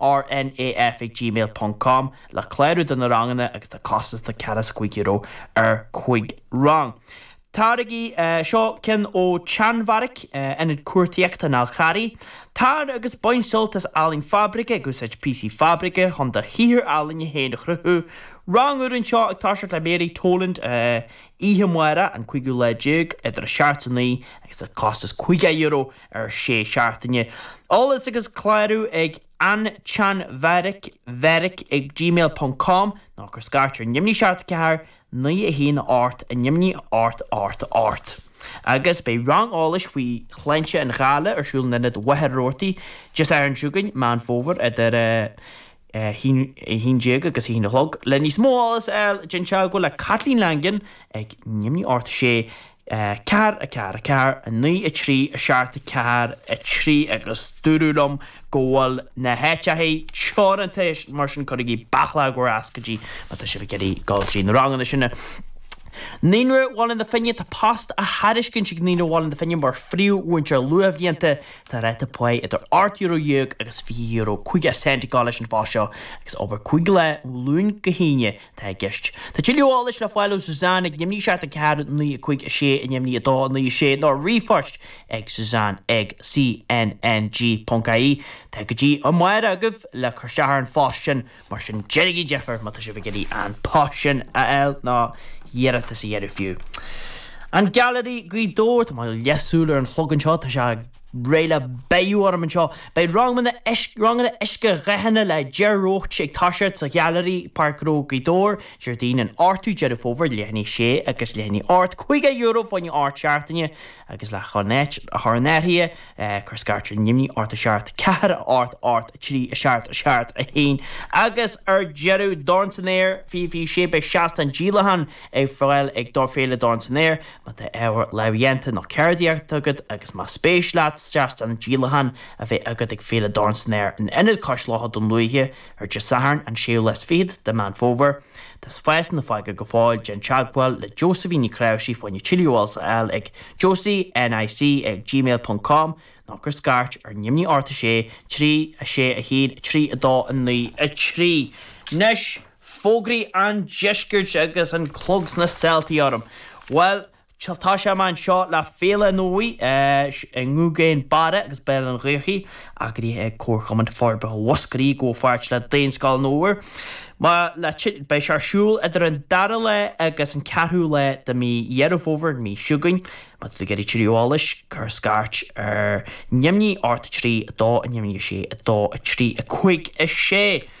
rnaf@gmail.com le clárú do na ranganna agus tá costas de ceathracha is a cúig euro ar cúig rang. Táirgí, Seo ceann ón tSeanbheairic, Ionad Cuartaíochta an Fháil Charraigh. Tar agus bain sult as ealaín fabraice ag úsáid píosaí fabraice chun do shaothar ealaíne féin a chruthú. Rang úr anseo ag toiseacht le Mary Toland oíche amárach, an cúigiú lá déag, idir a seacht is a naoi agus tá costas €50 ar sé seachtaine. Eolas agus clárú ag antseanbheairic, bheairic ag gmail ponc com nó cuir scairt ar neamhní 74 9 1 ocht a neamhní ocht ocht ocht. Agus beidh rang eolais faoi shláinte an ghoile ar siúl in Ionad Mhachaire Rabhartaigh, Dé Sathairn seo chugainn, Meán Fómhair idir 11 agus 1 a chlog. Le níos mó eolas a fháil déan teagmháil le Caitlín Langan ag neamhní ocht 6 4, 4, 4, 9, 3, 7, 4, 3, agus dúradh liom go bhfuil na háiteachaí teoranta mar sin cuirigí bealadh le bhur n-ioscaidí má tá sibh ag iarraidh dul go dtí na ranganna sin. Naíonra Bhaile na Finne Tá post á thairiscint ag Naíonra Bhaile na Finne mar phríomh-mhúinteoir luathbhlianta. Tá ráta paí idir ocht euro déag agus fiche euro caoga cent atá leis an phost seo agus obair cúig lá ó Luan go hAoine. atá i gceist. Tá tuilleadh eolais le fáil ó Suzanne ag neamhní 7 4 9 5 6 a neamhní 2 9 6 nó ar ríomhphost ag suzanne ag cnng.ie. Tá go dtí amárach agaibh le cur isteach ar an phost sin mar sin déanaigí deifir má tá sibh ag iarraidh an post sin a fháil nó iarratas a dhéanamh fiú. An Gailearaí, Gaoth Dobhair, Tá mo leathshúil ar an chlog anseo, tá sé. réidh le beathú orm anseo. Beidh ranganna uiscedhathanna le Ger Roach ag toiseacht sa Ghailearaí, Páirc Ghnó, Gaoth Dobhair, Déardaoin, an 8ú Deireadh Fómhair, leath i ndiaidh a sé agus leath i ndiaidh a hocht, €50 fá choinne ocht seachtaine agus le chun áit a chur in áirithe, cuir scairt ar neamhní, ocht 7, ceathair a hocht, ocht 3, a Seacht, a seacht, a hAon, agus ar deireadh, Dorn san Aer, Fífí, Sé beidh seastán díolacháin ar fáil ag Dor, Féile Dorn san Aer, Má tá ábhar lámhdhéanta nó ceardaíochta agat agus más spéis leat seastán díolacháin a bheith agat ag Féile Dorn san Aer in Ionad Cois Locha Dhún Lúiche ar Dé Sathairn an 26ú de Meán Fómhair, tá spásanna fágtha go fóill, déan teagmháil le Josephine Ní Ghráisc fá choinne tuilleadh eolais a fháil ag josie nic ag gmail ponc com nó cuir scairt ar neamhní ocht 6 3 6 1 3 2 9 3 Anois! Fógraí an Deiscirt agus an clog sna sáltaí orm. Bhuel, tá sé amach anseo le Féile Nua i nGúgén Barra agus Béal Átha an Ghaorthaidh, eagraithe ag Comharchumann Forbartha Mhúscraí i gcomhpháirt le Daonscoil an Fhómhair. Beidh sé ar siúl idir an dara lá agus an ceathrú lá de mhí Dheireadh Fómhair, an mhí seo chugainn. Má tá tú ag iarraidh tuilleadh eolais, cuir scairt ar neamhní, 8, 3, 2, neamhní, 6, 2, 3, 5, 6.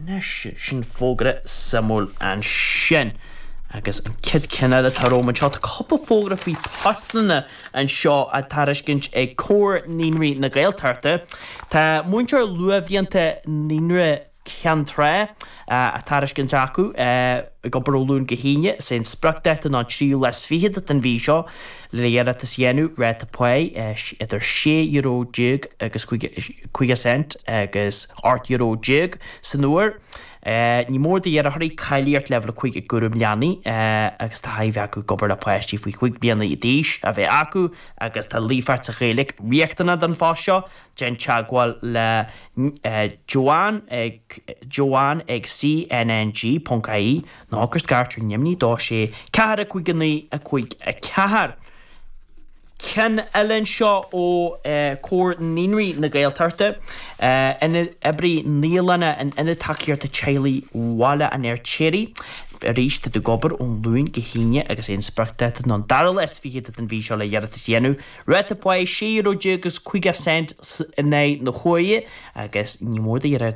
Anois, sin fógra suimiúil ansin. Agus an chéad cheann eile atá romham anseo, tá cúpla fógra faoi postanna anseo á tairiscint ag Comhar Naíonraí na Gaeltachta. Tá múinteoir luathbhlianta Naíonra Ceann Trá á thairiscint acu, ag obair ó Luan go hAoine. Is é an spriocdáta ná an tríú lá is fichead den mhí seo. Le hiarratas a dhéanamh Ráta pá idir sé euro déag agus caoga cent agus ocht euro déag san uair. Ní mór d'iarrthóirí cáilíocht Leibhéal 5 i gCúram Leanaí agus taithí acu ag obair le páistí faoi chúig bliana d'aois a bheith acu agus tá líofacht sa Ghaeilge riachtanach don phost seo. Déan teagmháil le Joanne ag joanne ag cnng.ie. Nó cuir scairt ar neamhní 2 6 4 5 9 5 4. Ceann eile anseo ó Comhar Naíonraí na Gaeltachta, Oibrí Naíolainne in Ionad Tacaíochta Teaghlaigh Bhaile an Fheirtéaraigh arís iad ag obair ón Luan go hAoine agus is é an spriocdáta ná an dara lá is fiche den mhí seo le hiarratas a dhéanamh. Ráta pá €16.50 in aghaidh na huaire agus ní mór d'iarratasóirí.